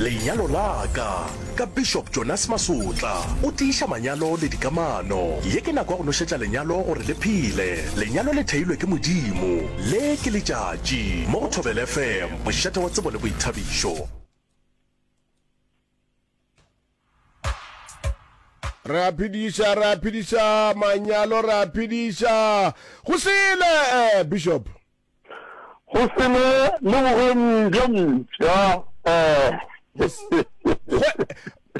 Lenyalo la ka, ka Bishop Jonas Masotla. O tiiša manyalo le dikamano. Ye ke nako ya go nošetša lenyalo gore le phele. Lenyalo le theilwe ke Modimo. Le ke letšatši. Mo go Thobela FM, mošate wa tsebo le boithabišo. re a phediša re a phediša manyalo re a phediša go sele eh, bishop Go se ne le bokgoni bjo mpsha.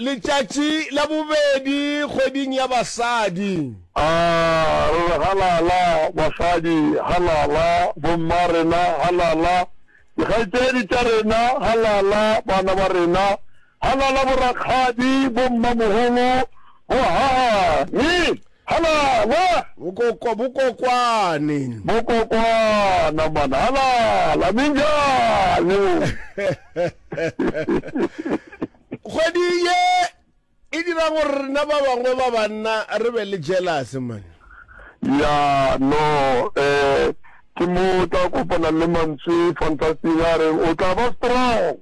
Letšatši la bobedi kgweding ya basadi. A re re halala, basadi halala, bomma rena halala, dikgaetšedi tša rena halala, bana ba rena halala, borakgadi, bommamogolo, bohahani. Halala! Bokokwa, bokokwane. Bokokwana, man. Halala! Minjani? Kgwedi ye e dira gore rena ba bangwe ba banna re be le jealous, man. Ya, no, eh, ke mo o tla kopana le mantswe fantastic a reng o tla ba strong.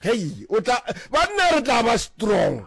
Hei, o tla, banna re tla ba strong.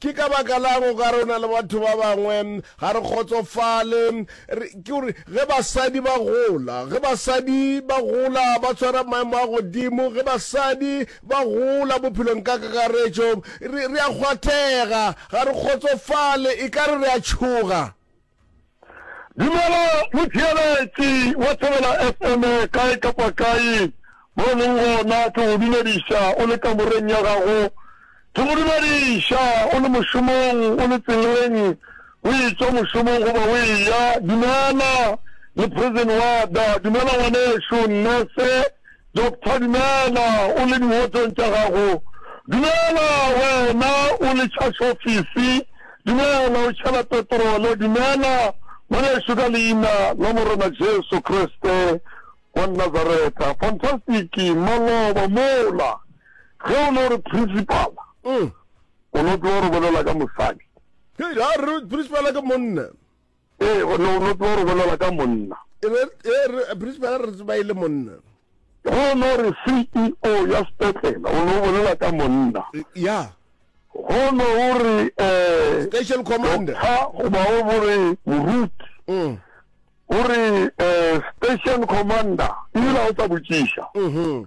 Ke ka baka la'ng o ka re o na le batho ba bangwe ga re kgotsofale? Re, ke gore ge basadi ba gola, ge basadi ba gola ba tshwara maemo a godimo, ge basadi ba gola bophelong ka kakaretšo, re, re a kgwathega, ga re kgotsofale, e ka re re a tšhoga. Dumela motheeletši wa Thobela FM kae kapa kae mo o leng gona, ke go dumediša o le kamoreng ya gago, ke go dumediša o le mošomong, o le tseleng, o etšwa mošomong goba o eya. Dumela le President Wada, dumela ngwanešu Nurse, Doctor, Dumela, o le diwotsong tša gago. Dumela, wena o le tšhasofisi. Dumela, o tšhela petrole. Dumela, ngwanešu, ka Leina la Morena Jesu Kriste wa Nazareta. Fantastic, maloba mola. Ge o no re principal, o no tlo re bolela ka mosadi. Hei, a re principal ke monna. Ee, go no no tlo re bolela ka monna. E be e re principal re tseba ile monna. Go no re CEO ya sepetlela o no bolela ka monna. Ya. Go no o re eh Station commander. Tha go ba o bore moruti. Mm. O re eh station commander ile o tla botšiša. Mhm.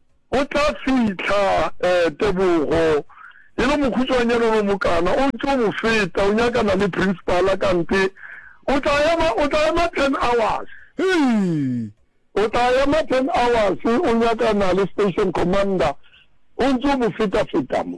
O tla fihla, ee, Tebogo, e le mokhutšoanyane o le mokana, o ntše o mo feta, o nyakana le Principal, kante o tla ema, o tla ema ten hours. Hee! O tla ema ten hours, o nyakana le Station Commander, o ntše o mo feta-feta mo.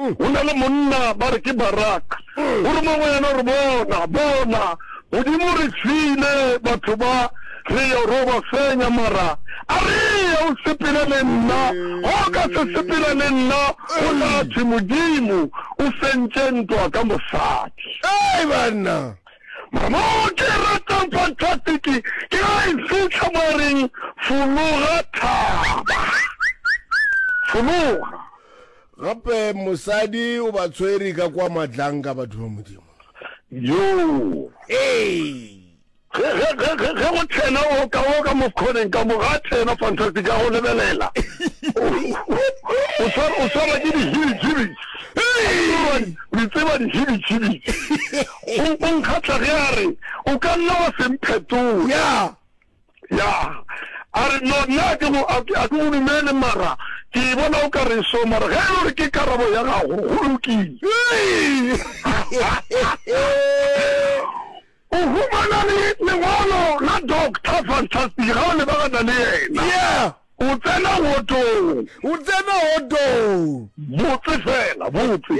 Go na le monna ba re ke Barak, o re mo go yena, o re, Bona, bona, Modimo o re file batho ba, re yo ro ba fenya, mara a re ye o sepele le nna, ga o ka se sepela le nna, go tla thwe Modimo o fentše ntwa ka mosadi. Hei banna! Mara mo ke e ratang fantastic ke ge a e fitlha mo a reng, Fologa thaba. Fologa. Gape mosadi o ba tshwere ka kwa matlanka batho ba Modimo. Yoo! Ee! Ge, ge, ge, ge, ge go tsena o ka, o ka mo sekgoneng ka mo, ga a tsena, fantastic, ka go lebelela. O, o swar- o swarwa ke dihibitšhibitši. Hey! Le tseba dihibitšhibitši. O, o nkgatla ge a re, O ka nna wa se mphetola. Ya! Ya, a re, no, nna a ke go, a ke, a ke go dumele, mara ke e bona o ka re so, mara ge e le gore ke karabo ya gago, go lokile. O humana le lengwalo la Doctor Fantastic, ga o lebagana le yena. Yeah. O tsena wotong. O tsena wotong. Botse fela, botse.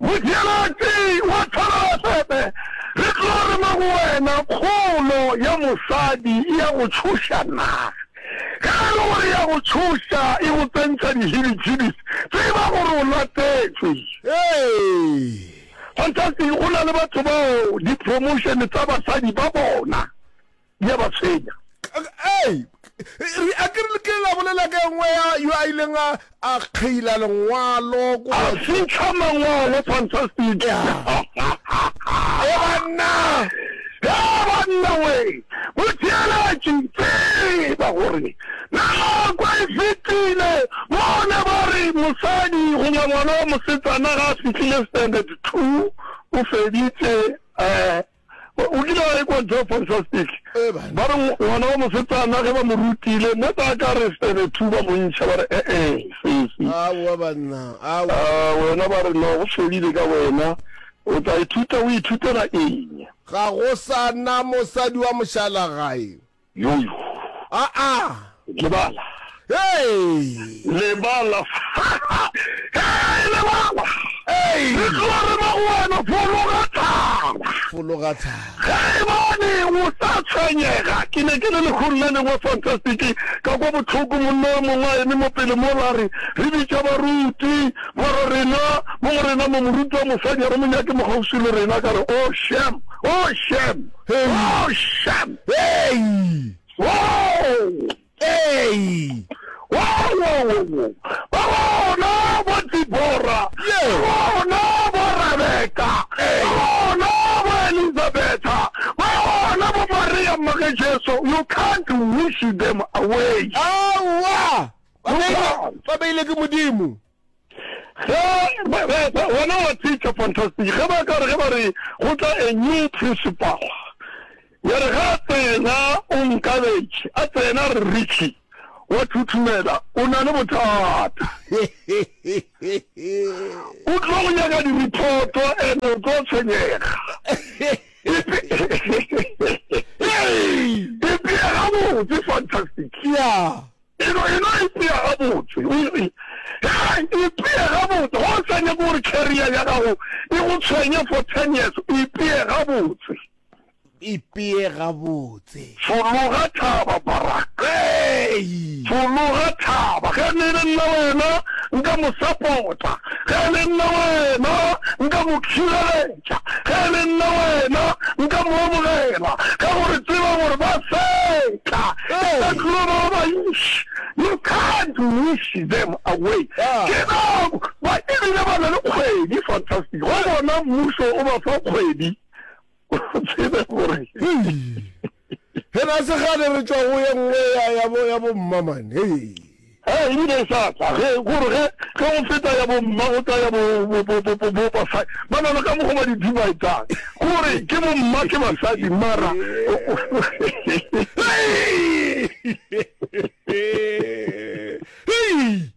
Motšheletši wa thalalasebe, re tlo re mo go wena, Kgolo ya mosadi e ya go tšhoša na? Ge e le gore e ya go tšhoša, e go tsentšha dihibidhibis, tseba gore o latetšwe. Fantastic, go na le batho bao di-promotion tsa basadi ba bona. di a ba tshwenya ei re a ke re ke la bolela ka engwe ya yo a ileng a a kgeila lengwalo ko a fitlha mangwalo fantastic e banna e banna we botheeletši tseba gore nako e fetile bone ba re mosadi goba ngwana wa mosetsana ga a fitlhile standard two o feditse um O kile wa ekwa Joe Fantastic? Ba re ngwana wa mosetsana ge ba mo rutile mo ba ka re sebe thu ba montšha ba re ee sesi. Aowa banna, aowa. A wena ba re no go fedile ka wena. O tla ithuta o ithutela eng? Ga go sa na mosadi wa mošalagae. Yoyo. Aa! Lebala. Hey! Lebala. Hey, lebala! Hey! Re tloga re ba go wena, fologa thaba! Fologa thaba! Ge e bane o sa tshwenyega, ke ne ke le lehung la lengwe fantastic, ka kwa bohloko monna yo mongwe a eme mo pele mola a re, Re bitša baruti, ba re, Rena, mo go rena mo, moruti wa mosadi a re mo nyake mo kgauswi le rena. Ka re, Oh, shem! Oh, shem! Oh, shem! Hei! Woo! Hei! Woo! Ba gona bo Dibora, ba gona bo Rabeka, ba gona bo Elizabetha, ba gona bo Maria mma ge Jesu, you can't wish them away. Aowa! Ba beilwe ke Modimo. Ge ba, ba, ba, wena wa teacher, fantastic, ge ba ka re, ge ba re go tla a new principal, ya re ge a tsena o nkabetše, a tsena a re, Richie, wa thuthumela, o na le bothata. O tlo go nyaka di-report-o and o tlo tshwenyega. Ipea gabotse, fantastic. Yeah. E no, e no ipea gabotse. O itse, Hei, ipee gabotse. Ga o sa nyake gore carrier ya gago e go tshwenye for ten years. Ipee gabotse. Ipee gabotse. Fologa thaba, Barak. Hei! Fologa thaba. Ge ne e le nna wena, nka mo support-a. Ge e le nna wena, nka mo khireletsa. Eupša ge e le nna wena, nka mo amogela, ka gore tseba gore ba feta. E ka tlo ba ba bantši. You can't wish them away. Ke nako. Ba ebile ba na le kgwedi. Fantastic. Go bona mmušo o ba fa kgwedi, o tsebe gore. He na se kgale re tšwa go ye nngwe ya, ya, bo, ya bomma, man. Hei. He, e bile e sa tla, ge, gore ge, ge o feta ya bomma, o tla ya bo, bo, bo, bo, bo, bo basadi. Ba na le ka mokgo ba di dividang, gore ke bomma, ke basadi, mara. Hei! Hei!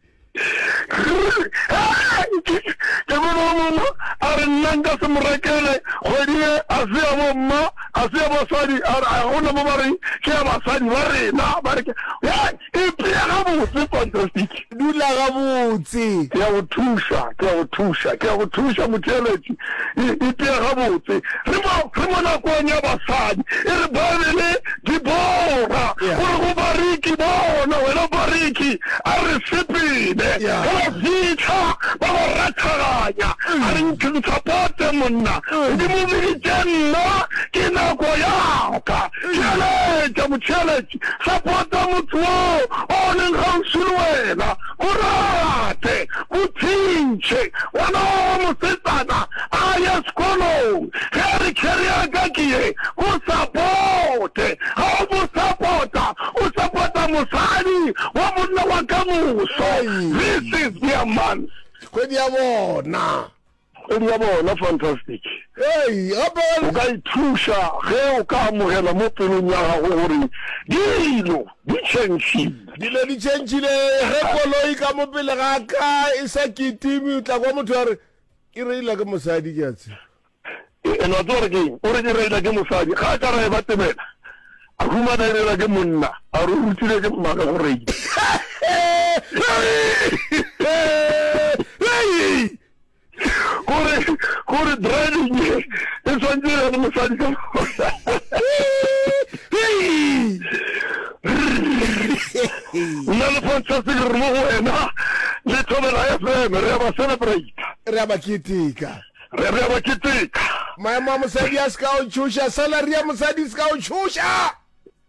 Ke bona yo mongwe a re, Nna nka se mo rekele kgwedi ye, a se ya bomma, a se ya basadi, a re, go na mo ba reng ke ya basadi ba rena, ba re ke ya. Ipea gabotse, fantastic. Dula gabotse. Ke a go thuša, ke a go thuša, ke a go thuša, motheeletši. E itia gabotse. Re mo, re mo nakong ya basadi. E re Baebele, Dibora, Yeah. o re go Bariki, Bona, wena Bariki, a re sepele. Yeah. Ge ba fitlha, ba ba rathaganya. A re introducer Pote, monna, Modimo o biditše nna, ke nako ya ka. Theeletša, motheeletši, support-a motse wo o leng kgauswi le wena. O rate, o thintšhe ngwana wa gago mosetsana a ye sekolong. Ge a re kheri ya ka ke ye, o sapote. Ga o mo sapota, o sapota mosadi wa monna wa ka moso. This is their month. Kgwedi ya bona. Go bja bona fantastic. Hei, gape ga O le. ka ithuša ge o ka amogela mo pelong ya gago gore dilo di tšhentšhile. Dilo di tšhentšhile. Ge koloi ka mo pele ga ka e sa kitime, o tla kwa motho a re, E reila ke mosadi, ke a tseba. E, and wa tseba gore ke eng? O re, E reila ke mosadi. Ga a ka ra e ba tebela, a humana e reilwa ke monna, a re o rutilwe ke mmaka go reila. Hei! gore gore driving e e swantse ya mosadi ka nna le fantastic re mo go wena le thobela fm re ya ba celebrate re a ba keteka re re ya ba keteka maemo a mosadi a se ka o tshoša salary ya mosadi se ka o tshoša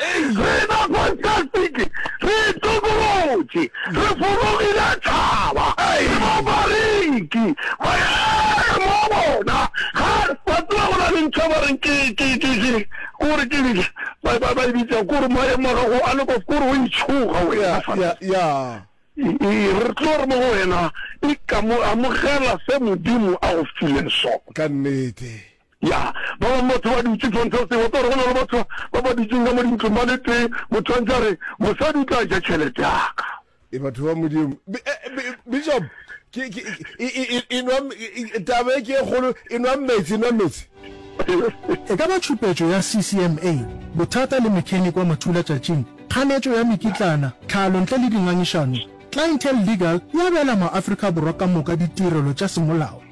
Re ba fantastic, re tokolotše, re fologile thaba, re ba bareki, maemo a bona ga wa tseba go na le ntho e ba reng ke ke ke ke kore ke eng ba ba ba e bitsa kore maemo a gago a le kwa kore o itshoga wena fa ya ya re tlo re mo go wena e ka mo amogela se modimo a go fileng sona ka nnete. Ya, ba bangwe batho ba dutše tshwantse o tseba gore go na le batho ba ba dutšeng ka mo dintlong ba le tee motho a ntse a re mosadi o tla ja tšhelete yaka e batho ba modimo bishop enwa tabe ke e kgolo enwa metsi enwa metsi e ka ba tšhupetšo ya ccma bothata le mechanic wa mathula tšatšing kganetšo ya mekitlana tlhalo ntle le dingangišano clientele legal ya beela maafrika borwa ka moka ditirelo tša semolao